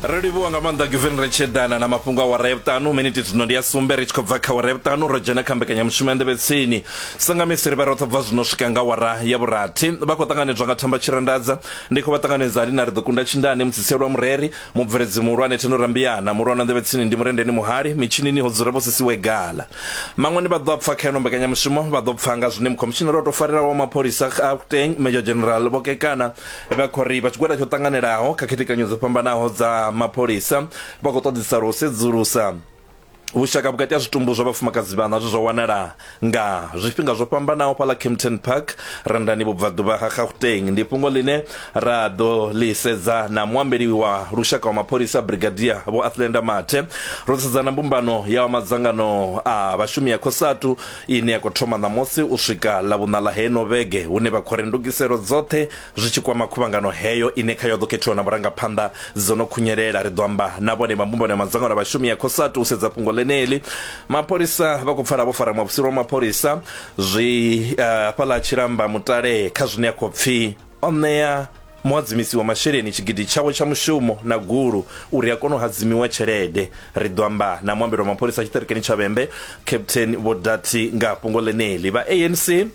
ri livhuwa nga maanḓa givin ri tshi eḓana na mafhungo a wara ya vhuṱanu miniti zwino ndi ya sumbe ri tshi khou bva kha wara ya vhuṱanu ro dzhena kha mbekanyamushumo ya nḓevhe tsini sangamisi ri vha roṱhe bva zwino swika nga wara ya vhurathi vha khou ṱanganedzwa nga thamba tshirandadza ndi khou vha ṱanganedza ali na ri ḓo kunda tshindane mutsitsielwa mureri mubveledzi muhulwane theno rambiyana muhulwane wa nḓevhe tsini ndi murendeni muhali mitshinini ho dzula vho sisiwe gala maṅwani vha ḓo pfa kha ino mbekanyamushumo vha ḓo pfa nga zwine mukhomishinari o tou farelaho wa mapholisa a kuteng major general vhokekana Vha khou ri vha tshigwada tsho ṱanganelaho kha khethekanyo dzo fhambanaho dza mapholisa vha khou ṱoḓisa u sedzulusa vhushaka vhukati ha zwitumbu zwa vhafumakadzi vhaṋa zwe zwa wanala nga zwifhinga zwo fhambanaho fhaḽa Kempton Park Randani vhubvaḓuvha ha Gauteng ndi fhungo ḽine ra ḓo ḽi sedza na muambeli wa lushaka wa mapholisa Brigadier Vho Athlenda Mathe ro sedza na mbumbano ya madzangano a vhashumi ya Cosatu ine ya khou thoma ṋamusi u swika Ḽavhuṋa ḽa heino vhege, hune vha khori ndugiselo dzoṱhe zwi tshi kwama khuvhangano heyo ine khayo ho ḓo khethiwa na vhurangaphanḓa dzo no khunyelela. Ri ḓo amba na vhone vha mbumbano ya madzangano a vhashumi ya Cosatu u sedza fhungo ḽeneḽi. Mapholisa vha khou pfala vho fara muofisiri wa mapholisa zwi hafhaḽa Tshilamba Mutale kha zwine a khou pfi O ṋea muhadzimisi wa masheleni tshigidi tshawe tsha mushumo na gulu uri a kone u hadzimiwa tshelede. Ri ḓo amba na muambeli wa mapholisa a tshiṱirikini tsha Vhembe, Captain Vho Dathi nga ha fhungo ḽeneḽi. Vha ANC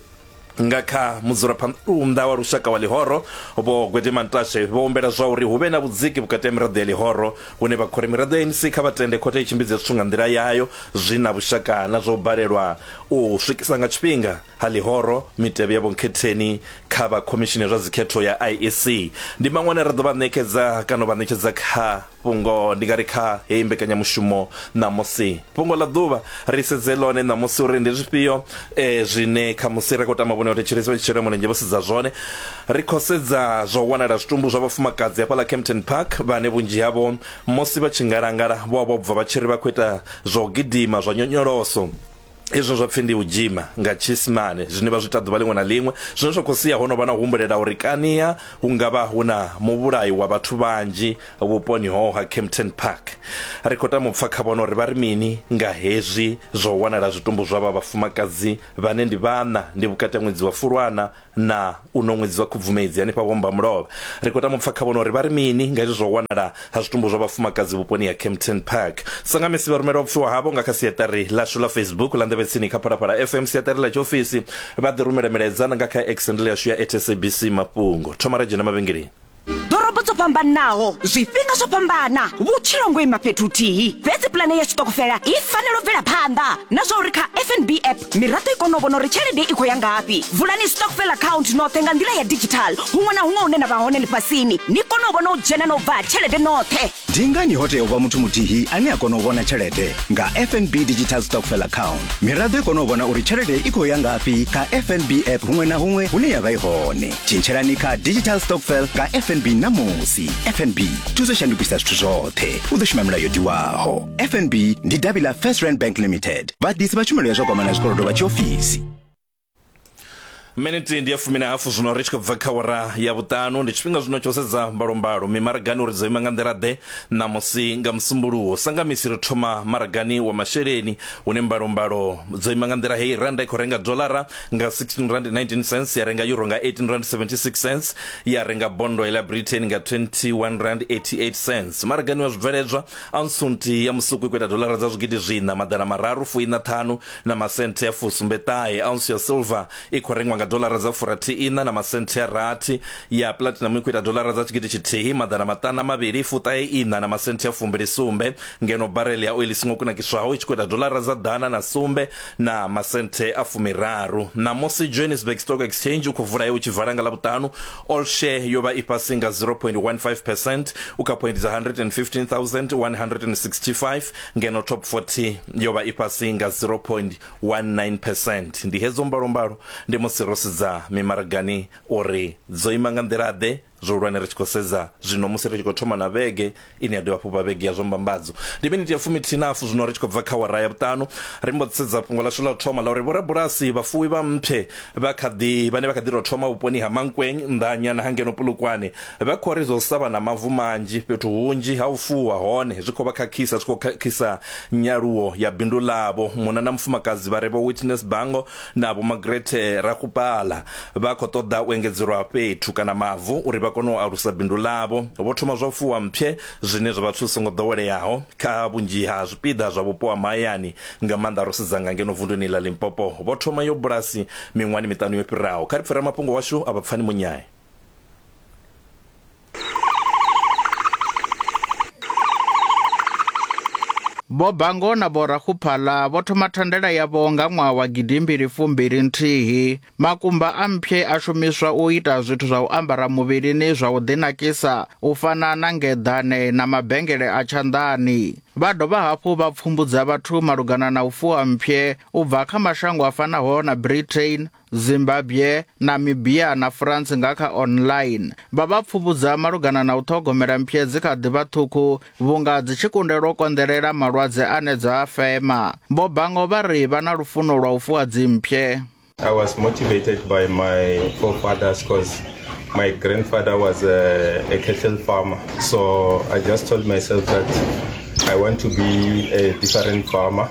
nga kha mudzulaphanḓa wa lushaka wa Ḽihoro Vho Gwede Mantashe vho humbela zwa uri hu vhe na vhudziki vhukati ha miraḓo ya Ḽihoro hune vha khou ri miraḓo ya ANC kha vha tende khothe i tshimbidze zwithu nga nḓila yayo zwi na vhushaka na zwa u balelwa u swikisa nga tshifhinga Ha ḽihoro, mitevhe ya vhonkhetheni kha vha Khomishini ya zwa Dzikhetho ya IEC ndi maṅwe ane ra ḓo vha ṋekedza kana u vha ṋetshedza kha fhungo, ndi nga ri kha heyi mbekanyamushumo ṋamusi. Fhungo ḽa ḓuvha, ri sedze ḽone ṋamusi uri ndi zwifhio zwine khamusi ra khou tama vhone vhathetshelesi vha tshi shela mulenzhe vho sedza zwone. Ri khou sedza zwa u wanala ha zwitumbu zwa vhafumakadzi hafhaḽa Kempton Park vhane vhunzhi havho musi vha tshi ngalangala vho vha vho bva vha tshi ri vha khou ita zwa u gidima zwa nyonyoloso. hezwo zwa pfi ndi u dzhima nga tshiisimane zwine vha zwi ita ḓuvha ḽiṅwe na ḽiṅwe zwine zwa khou sia ho no vha na humbulela uri kania hu nga vha hu na muvhulayi wa vhathu vhanzhi vhuponi hoho ha Kempton Park ri khou tama u pfa kha vhona uri vha ri mini nga hezwi zwa u wanala zwitumbu zwa vha vhafumakadzi vhane ndi vhana ndi vhukati ha ṅwedzi wa Fulwana na u no ṅwedzi wa khubvumedzi hanefha vhomba mulovha ri khou tama u pfa kha vhona uri vha ri mini nga hezwi zwa u wanala ha zwitumbu zwa vhafumakadzi vhuponi ha Kempton Park sangamisi vha rumela vhupfiwa havho nga kha siaṱari ḽashu ḽa Facebook ḽa nḓevhe tsini kha phalaphala FM siaṱari ḽa tshiofisi vha ḓi rumela milaedza na nga kha exendele yashu ya at SABC mafhungo thoma ra dzhena mavhengeleni ḓorobo dzo fhambanaho zwifhinga zwo fhambana vhutshilo ngo ima fhethu huthihi fhedzi pulane ya tshiṱokofela i fanela u bvela phanḓa na zwa uri kha fnb app miraḓo i kone u vhona uri tshelede i khou ya ngafhi vulani stokfel account noṱhe nga nḓila ya digital huṅwe na huṅwe hune na vha hone ḽifhasini ni kone u vhona u dzhena na u bva ha tshelede noṱhe Ndi ngani ho tea u vha muthu muthihi ane a kona u vhona tshelede nga FNB Digital Stockfell Account? Miraḓo i kona u vhona uri tshelede i khou ya ngafhi kha FNB app huṅwe na huṅwe hune ya vha i hone. Tshintshelani kha Digital Stockfell nga FNB ṋamusi. FNB, thuso shandukisa zwithu zwoṱhe. U ḓo shuma milayo yo tiwaho. FNB ndi davhi ḽa First Rand Bank Limited, vhaḓisi vha tshumelo ya zwa gwama na zwikolodo vha tshiofisi. miniti ndi ya fumi na hafu zwino ri tshi khou bva kha wara ya vhuṱanu ndi tshifhinga zwino tsho sedza mbalombalo mimaragani uri dzo ima nga nḓila-ḓe ṋamusi nga musumbuluwo sa nga misi ri thoma maragani wa masheleni hune mbalombalo dzo ima nga nḓila heyi randa i khou renga dolara nga 16 rand 19 cents ya renga euro nga 18 rand 76 cents ya renga bondo ya britain nga 21 rand 88 cents maragani wa zwibveledzwa ansunti ya musuku i khou ita dolara dza zwigidi zwiṋa maḓana mararu fuiṋa ṱhanu na masenthe a fusumbe ṱahe ounce ya silver i khou rengwa nga dolara dza furathiiṋa na masenthe a rathi ya platinum i khou ita dolara dza tshigidi tshithihi maḓana maṱana mavhili fuṱahe iṋa na masenthe a fumbili sumbe ngeno barel ya oili songo kunakiswaho i tshi khou ita dolara dza ḓana na sumbe na masenthe a fumiraru ṋamusi johannesburg stock exchange u khou vula he u tshi vala nga ḽavhuṱanu all share yo vha i fhasi nga 0.15 percent u kha point dza 115165 ngeno top 40 yo vha i fhasi nga 0.19 percent ndi hedzo mbalombalo ndi musi ro sedza mimaragani uri dzo ima nga nḓila-ḓe zwihulwane ri tshi khou sedza zwino musi ri tshi khou thoma na vhege ine ya dovha fhufha vhege ya zwa mbambadzo ndi miniti ya fumithihi na hafu zwino ri tshi khou bva kha wara ya vhuṱanu ri mbo ḓi sedza fhungo lashu ḽa u thoma ḽa uri vhorabulasi vhafuwi vha mphe vha kha ḓi vhane vha kha ḓi tou thoma vhuponi ha mankweng nḓanyana ha ngeno pulukwane Vha khou ri zwo sa vha na mavu manzhi fhethu hunzhi ha u fuwa hone zwi khou vha khakhisa, zwi khou khakhisa nyaluwo ya bindu ḽavho. Munna na mufumakadzi vha re Vho Witness Bango na Vho Margaret Rakgopala vha khou ṱoḓa u engedzelwa fhethu kana mavu uri vha kone u alusa bindu ḽavho. Vho thoma zwa u fuwa mpshe zwine zwa vha zwithu zwi songo ḓoweleaho kha vhunzhi ha zwipiḓa zwa vhupo ha mahayani nga maanḓa ro sedza nga ngeno vunduni ḽa Limpopo. Vho thoma yo bulasi miṅwahani miṱanu yo fhiraho. Kha ri pfe ramafhungo washu a vha Pfani Munyae. Vho Bango na Vho Rakhuphala vho thoma thandela yavho nga ṅwaha wa gidimbili fumbili nthihi. Makumba a mpye a shumiswa u ita zwithu zwa u ambara muvhilini zwa u ḓinakisa u fana na ngeḓane na mabengele a tshanḓani. Vha dovha hafhu vha pfumbudza vhathu malugana na u fuwa mpye u bva kha mashango a fanaho na Britain, Zimbabwe, Namibia na France nga kha online vha vha pfuvhudza malugana na u ṱhogomela mphye dzi kha ḓivha ṱhukhu vhunga dzi tshi kundelwa u konḓelela malwadze ane dza a fema. Vho Bango vha ri vha na lufuno lwa u fuwa dzimphye. I was motivated by my forefathers because my grandfather was a, a cattle farmer. So I just told myself that I want to be a different farmer.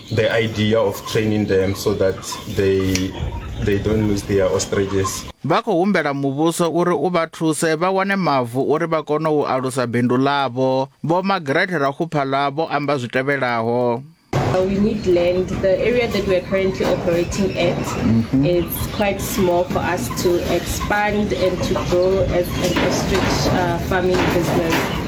the idea of training them so that they they don't lose their ostriches vha khou humbela muvhuso uri u vha thuse vha wane mavu uri vha kone u alusa bindu ḽavho vho magrete rakhuphala vho amba zwi tevhelaho Uh, we need land. The area that we are currently operating at mm -hmm. is quite small for us to expand and to grow as an ostrich uh, farming business.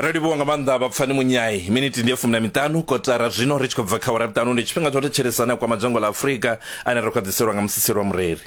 ri livhuwa nga maanḓa vhapfani munyai miniti ndi ya fumi na miṱanu kotara zwino ri tshi khou bva kha wara vhuṱanu ndi tshifhinga tsho thetshelesana kwa madzhango ḽa afurika ane ro khwaḓiselwa nga musisi lwa mureri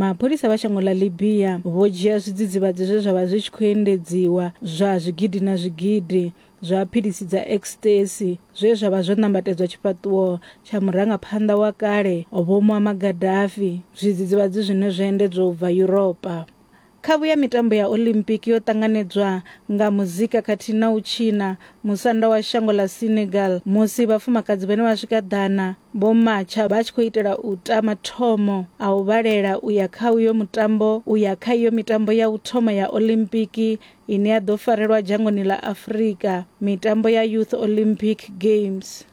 Mapholisa vha shango ḽa Libya vho dzhia zwidzidzivhadzi zwe zwa vha zwi tshi khou endedziwa zwa zwigidi na zwigidi zwa philisi dza ecstasy zwe zwa vha zwo nambatedzwa tshifhaṱuwo tsha murangaphanḓa wa kale Vho Muammar Gaddafi, zwidzidzivhadzi zwine zwo endedzwa u bva Yuropa. Khavhu ya mitambo ya Olympic yo ṱanganedzwa nga muzika khathihi na u tshina musanda wa shango ḽa Senegal musi vhafumakadzi vhane vha swika ḓana vho matsha vha tshi khou itela u ta mathomo a u vhalela u ya kha uyo mutambo u ya kha iyo mitambo ya u thoma ya Olympic ine ya ḓo farelwa dzhangoni ḽa Afrika, mitambo ya Youth Olympic Games.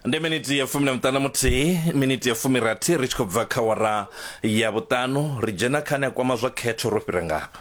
ndi miniti ya fumi na miṱanu muthihi miniti ya fumi rathi ri tshi khou bva kha wara ya vhuṱanu ri dzhena kha ane a kwama zwa khetho ro fhira ngafha